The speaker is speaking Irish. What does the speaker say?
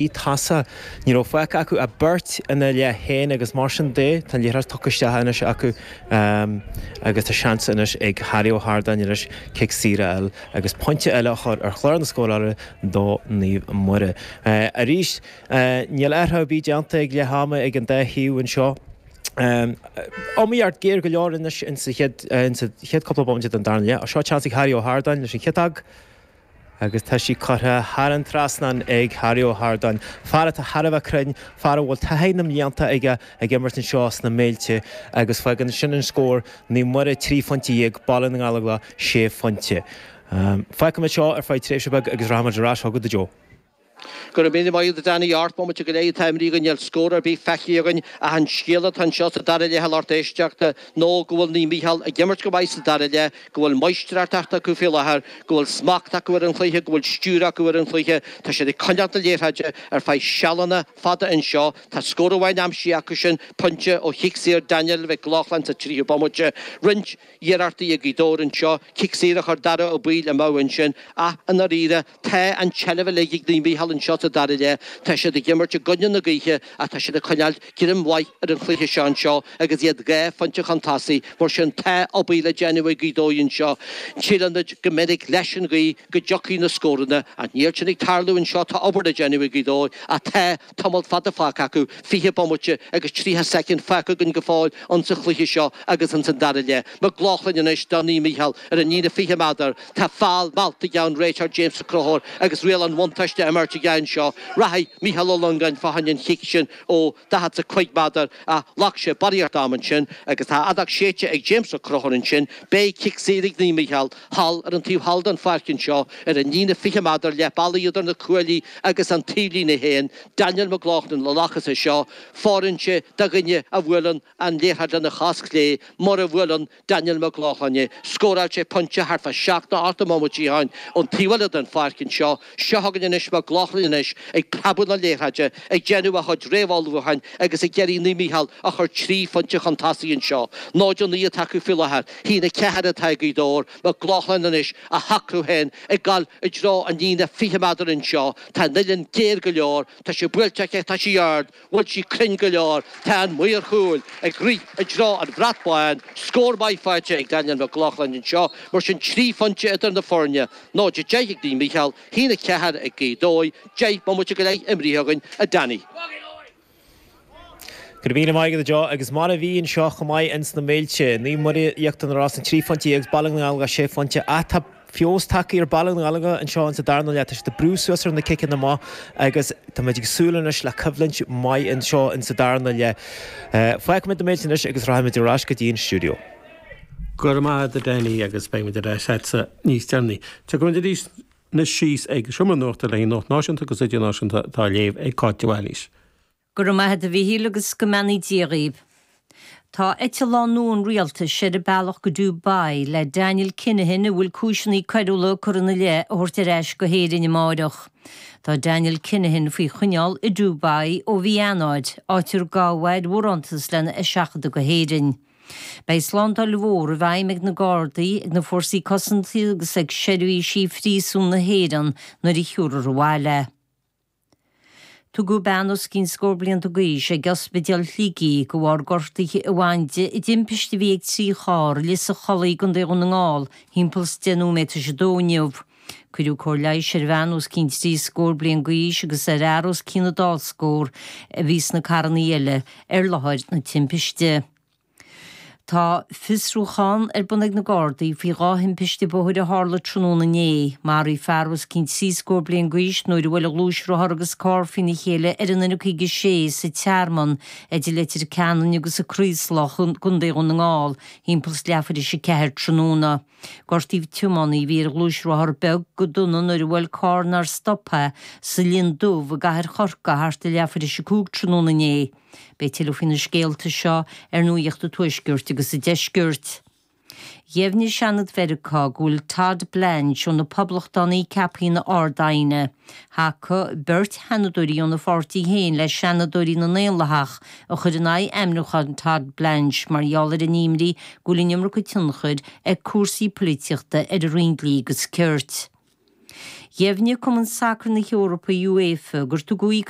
i dtaca. Ní raibh fágtha acu ach beirt ina leath féin agus mar sin de tá an liathróid tugtha isteach anois acu agus tá seans anois ag Harry Ó hArdáin anois cic saor a fháil agus pointe eile a chur ar chlár na scórála do Naomh Muire. Arís níl athrú ar bith déanta ag leath ama ag an dá thaobh anseo. Iomaíocht ghéar go leor anois in sa chéad cúpla bomaite den darna leath. Seo seans ag Harry Ó hArdáin leis an chéad agus tá sí curtha thar an trasnán ag Harry Ó hArdáin, fear atá thar a bheith cruinn, fear a bhfuil taithí na mblianta aige ag imirt anseo sna Méilte agus fágann sin an scór, Naomh Muire trí phointe dhéag, Baile na nGallóglach sé phointe. Fágfaimid seo ar feadh tréimhse beag agus rachaimid ar ais chugat, a Joe. Go raibh míle maith agat Danny, ocht mbomaite go leith atá imrithe agus níl scór ar bith feicthe againn ach an scéal atá anseo sa dara leith a lucht éisteachta nó go bhfuil Naomh Mícheál ag imirt go maith sa dara leith, go bhfuil maistreartacht acu faoi láthair, go bhfuil smacht acu ar an chluiche, go bhfuil stiúir acu ar an chluiche, tá siad ag coinneáil na liathróide ar feadh sealanna fada anseo, tá scór amháin aimsithe acu sin, pointe ó chic saor Daniel Mhic Lochlainn sa tríú bomaite, roinnt iarrachtaí ag Gaoth Dobhair anseo, cic saor a chuir Dara Ó Baoill amú ansin ach i ndáiríre, Tá an tseilbh uilig ag Naomh Mícheál anseo sa dara leath, tá siad ag imirt i gcoinne na gaoithe ach tá siad ag coinneáil greim mhaith ar an chluiche seo anseo agus iad dhá phointe chun tosaigh, mar sin tá obair le déanamh ag Gaoth Dobhair anseo. Síleann muid go minic leis an ghaoth go dtiocfaidh na scóranna ach níl sin ag tarlú anseo, tá obair le déanamh ag Gaoth Dobhair ach tá tamall fada fágtha acu, 20 bomaite agus 30 soicind fágtha againn go fóill ins an chluiche seo agus ins an dara leath. McLaughlin anois do Naomh Micheál ar an líne 20 meadar. Tá foul meallta aige, an réiteoir James Ó Conchúir agus riail an bhuntáiste á imirt aige anseo. Rachaidh Micheál Ó Longáin fá choinne an chic sin ó 45 meadar. Ach ghlac sé barraíocht ama ansin agus tá a fheadóg séidte ag James Ó Conchúir ansin, beidh cic saor ag Naomh Mícheál thall ar an taobh thall den pháirc anseo ar an líne 20 meadar leath bealaigh idir na cuaillí agus an taobhlíne fhéin, Daniel McLaughlin a ghlacfas é seo, fóireann sé do dhuine a bhuaileann an liathróid lena chos chlé, mar a bhuaileann, Daniel Mac Lochlainn é. Scóráil sé pointe thart fá seacht nó ocht mbomaite ó shin ón taobh eile den pháirc anseo. Seo chugainn anois Mac Lochlainn anois ag preabadh na liathróide, ag déanamh a chuid réamhullmhúcháin agus ag iarraidh Naomh Mícheál a chur trí phointe chun tosaigh anseo. 0-9 atá acu faoi láthair. Haon a ceathair atá ag Gaoth Dobhair. Mac Lochlainn anois, á shocrú féin ag dul i dtreo an líne 20 meadar anseo. Tá an uillinn géar go leor. Tá sé buailte aige, tá sí ard. Bhfuil sí cruinn go leor, tá an maor chúil ag rith i dtreo an bhrat bháin, scór maith faighte ag Daniel McLaughlin anseo, mar sin trí phointe idir na foirne, 0-10 ag Naomh Micheál, haon a ceathair ag Gaoth Dobhair. Deich mbomaite go leith imrithe againn, a Danny. Go raibh míle maith agat, a Joe, agus mar a bhí anseo chomh maith ins na Méilte, Naomh Muire, Íochtar na Rosann, trí phointe dhéag, agus Baile na nGallóglach sé phointe, ach tá. Fós tacaí ar Baile na nGallóglach anseo in sa darna leath. Tá siad ag brú suas ar na ciceanna amach agus táimid ag súil anois le coimhlint mhaith anseo in sa darna leath. Fágfaimid na Méilte anois agus rachaimid ar ais go dtí an stiúideo. Go raibh maith agat a Damhnait agus beimid ar ais leatsa níos deireanaí. Tiocfaimid arís anois siar ag Seomra Nuachta le haghaidh nuacht náisiúnta agus idirnáisiúnta atá a léamh ag Cáit de Bhailís. Go raibh maith a't a Mhichíl agus go mbeannaí Dia dhaoibh. Tá eitleán nua an Rialtais ar a bealach go Dubai le Daniel Kinahan a bhfuil cúiseannaí coiriúla curtha ina leith a thabhairt ar ais go hÉirinn amáireach. Tá Daniel Kinahan faoi choinneáil i Dubai ó mhí Eanáir, áit ar gabhadh é ar bharántas lena sheachadadh go hÉirinn. Beidh slándáil mhór i bhfeidhm ag na Gardaí, ag na Fórsaí Cosanta agus ag Seirbhís Phríosúin na hÉireann nuair a thabharfar abhaile é. Tugadh bean os cionn scór bliain d'aois ag Ospidéal Shligigh de bharr gortuithe a bhain di i dtimpist a bhí ag trí charr i Lios an Chollaigh i gContae Dhún na nGall thimpeall 's deich nóiméad tar éis a dó inniu. Cuireadh cóir leighis ar bhean os cionn trí scór bliain d'aois agus ar fhear os cionn a dá scór a bhí sna carrannaí eile ar láthair na timpiste. Tá fiosrúchán ar bun ag na Gardaí faoi dhá thimpiste bhóthair a tharla tráthnóna inné. Maraíodh fear os cionn trí scór bliain d'aois nuair a bhuail gluaisrothar agus carr faoina chéile ar an N56 sa Tearmann idir Leitir Ceanainn agus an Craoslach i gcontae Dhún na nGall thimpeall is leathuair tar éis a ceathair tráthnóna. Gortaíodh tiománaí a bhí ar ghluaisrothar beag go dona nuair a bhuail carr nár stop é sa Linn Dubh i gcathair Chorcaí thart ar leathuair tar éis a cúig tráthnóna inné. Beidh tuilleadh faoi na scéalta seo ar nuacht an Tuaiscirt agus an Deiscirt. Dheimhnigh Seanad Mheiriceá go bhfuil Todd Blanche ó na Poblachtánaigh ceaptha ina Ard-Aighne. Thacaigh beirt Sheanadóirí óna pháirtí féin le Seanadóirí na nDaonlathach a chuir in aghaidh ainmniúchán Todd Blanche mar gheall ar a n-imní go bhfuil an iomarca tionchair ag cúrsaí polaitíochta ar an Roinn Dlí agus Cirt. Dheimhnigh Cumann Sacair na hEorpa, UEFA, gur tugadh